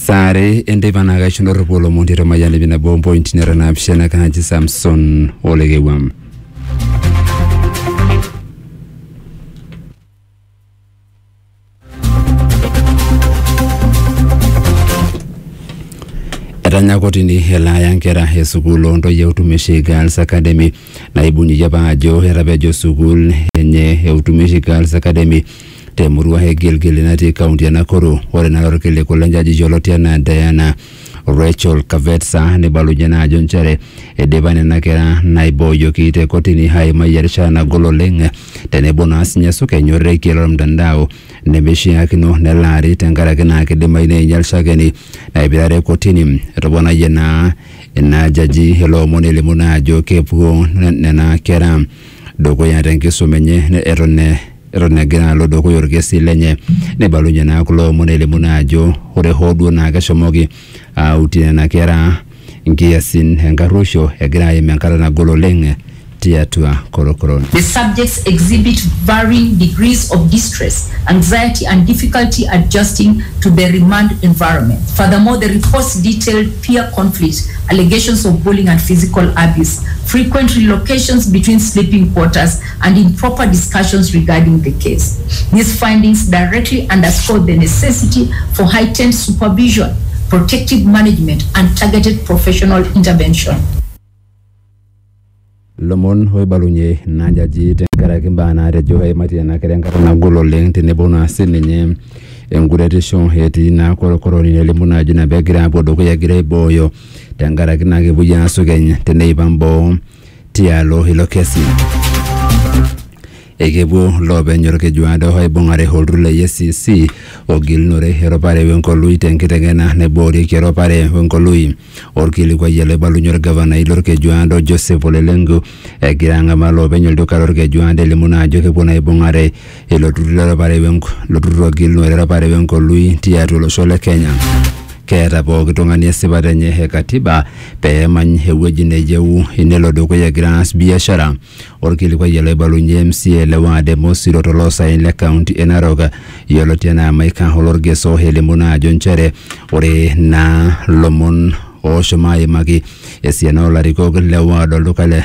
saa are enteipa naa kaisho ndorropu olomon tiatua mayian ipi nabo ompointi nara naapishana kaaji samson olekewam etanya kotini elaaya nkera e sukuul ontoyie utumishi girls academy naibung'ieki apa ajo etapejo sukuul enye e utumishi girls academy te murua e Gilgili natii kaunti e Nakuru. Ore naa lorkiliku le njaji yioloti anaa Diana Rachel Kavetsa neibalunye naa ajo nchere eidipa nena kera naibooyoki te kotini aimai erishata nagol oleng tenebo naa sinye esukeny orekie lormtandao nemeishiakino nelaari tenkaraki naa keidimayu neinyal shakeni naipirare kotini. Etoponayie naa ina jaji ilo omoni elimu naa ajo kepuo nena kera dukuya te nkisuma enye eton Eton egira alo dukuya olkesi lenye, neibalunye naa kulo omon elimu naa ajo ore hoo duo naa keshomoki aautie nena kera nkiasin enkarruoisho, egira aim enkata nagol oleng tiatua korokoron. The subjects exhibit varying degrees of distress, anxiety and difficulty adjusting to the remand environment. Furthermore, the reports detailed peer conflict, allegations of bullying and physical abuse, frequent relocations between sleeping quarters, and in proper discussions regarding the case. These findings directly underscore the necessity for heightened supervision, protective management, and targeted professional intervention. lomon oibalunye ina jaji tenkaraki mbaa naatejo eimaitie ena kerai enkata nagol oleng tenebo naa sininye enkuretisho etii naa korokoroni nelimu naa ajo ina pegira apuo dukuya egira aibooyo tenkaraki naa kepuoi aasukeny teneipang boo tialo ilo kesi. Ekepuo loopeny olkeju aado aibung'are olturur le EACC ogilunore eropare wenkolui tenkiteng'ena naiboorieki eropare wenkolui. Olkilikuai ele oibalunye olgavanai lolkeju aado Joseph Ole Lenku egira ang'amaa loopeny olduka lolkeju aado elimu naa ajo kepuo naa aibung'are ilo turrur lerapare wenkolui tiatua olosho le Kenya. Keeta pooki tung'ani esipata enye e katiba pee emany ewueji neyieu nelo dukuya egira aas biashara. Orkilikuai ele oibalunye MCA le ward e Mosiro toloosaen le kaunti e Narok yioloti enaa Maika Olorgeso elimu naa ajo nchere ore naa lomon ooshomo aimaki esiana olarikok le ward olduka le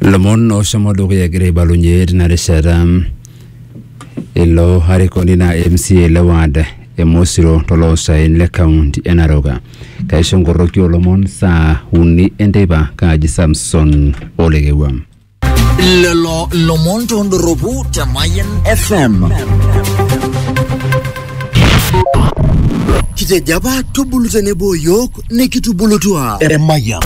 lomon oshomo dukuya egira aibalunye tina rishata ilo arikoni naa MCA le ward e Mosiro toloosaen le kaunti e Narok. Kaisho nkoroki olomon saa uni enteipa kaaji Samson Olekewua. lelo lomon tondoropu te Mayan FM. Kitejo apa tubulu tenebo yiok nikitubulutua emayian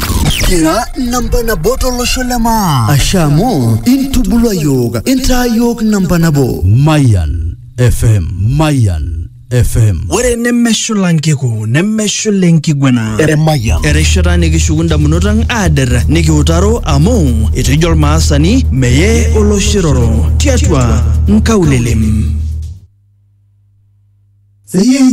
kira namba nabo tolosho le maa ashe amu intubulua yiok intaa yiok namba nabo Mayan FM. Mayan FM. ore nemeshula nkiku nemeshula enkiguana emayian erishata nikishuku ndamunot ang aader nikiutaro amu etejo olmaasani meye oloshiroro tiatua nkaulelem